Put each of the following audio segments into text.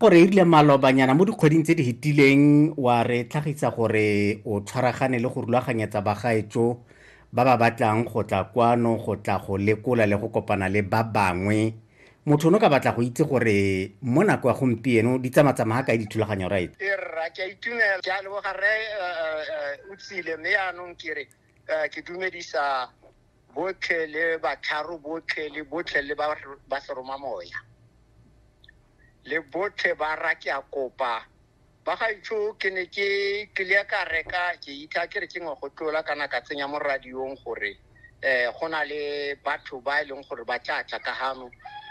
o re irile malobanyana mo dikgweding tse di hetileng wa re tlhagisa gore o tshwaragane le go rulaganyetsa bagaetso ba ba batlang go tla kwano go tla go lekola le go kopana le ba bangwe motho ono ka batla go itse gore mo nako ya gompieno di tsamatsamaga kae dithulaganyo right e rra ke a itumela ke a leboga rre eh, eh, eh, o tsile mme yaanong ke re ke dumedisa botlhe le batharo botlhe le botlhe le ba seroma moya le botlhe ba ra ke a kopa ba ga itsho ke ne ke tlile ka reka ke itha ke re ke ngwe go tlola kana ka tsenya mo radiong gore um go na le batho ba e leng gore ba tla tla ka gano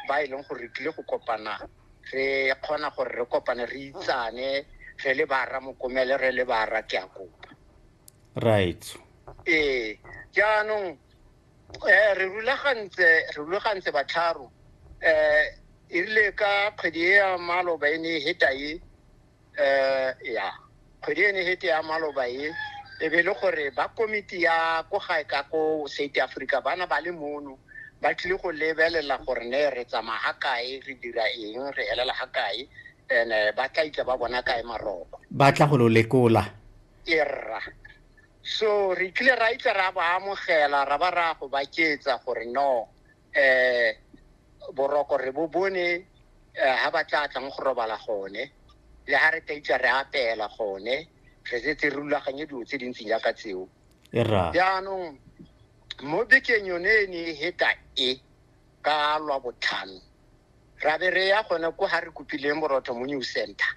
ba e leng gore re tlile go kopana re kgona gore re kopane re itsane re le ba rra mokomele re le ba rra ke a kopa right ee jaanong um re rulagantse re rulagantse batlharo um e rile ka kgwedi e ya maloba e ne e heta e um ya kgwedi e ne e hete ya maloba e e be e le gore ba komiti ya ko gae ka ko south africa bana ba le mono ba tlile go lebelela gore ne re tsamaya ga kae re dira eng re elela ga kae and ba tla itla ba bona kae maroko ba tla go lo lekola erra so re tlile ra itse ra ba amogela ra ba ra go baketsa gore no eh boroko re bo bone ha ba tla tlang go robala gone le ha re ka itse re apela gone re setse re rulaganye dilo tse dintsi jaaka tseo jaanong mo bekeng yone e ne e heta e ka lwa botlhano ra be re ya gone ko ga re kopileng borotho mo new center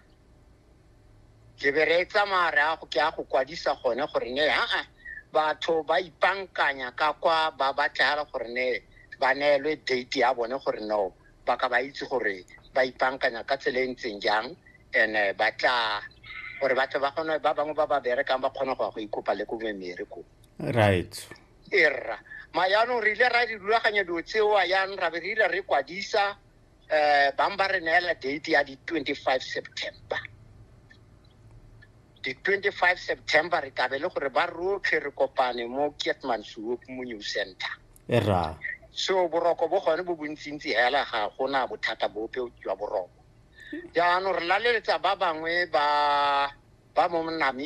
ke be re tsamaya re ago ke a go kwadisa gone gore ne aa batho ba ipankanya ka kwa ba batlega gore ne ba neelwe date ya bone gore no ba ka ba itse gore ba ipankanya ka tsela e ntseng jang and eh, ba tla gore batho ba kgone ba bangwe ba ba berekang ba kgone go ya go ikopa le ko memere ko right e rra ma yaanong re ile ra di rulaganya dilo tseoa yang ra be re ile re kwadisa um bang ba re neela date ya di-twenty-five september di-twenty-five september re kabe le gore ba rotlhe re kopane mo kietman suop mo new center e rra so boroko bo gone bo bontsintsi hela ga gona bothata bope jwa boroko jaanong re laleletsa ba bangwe ba ba mo namibia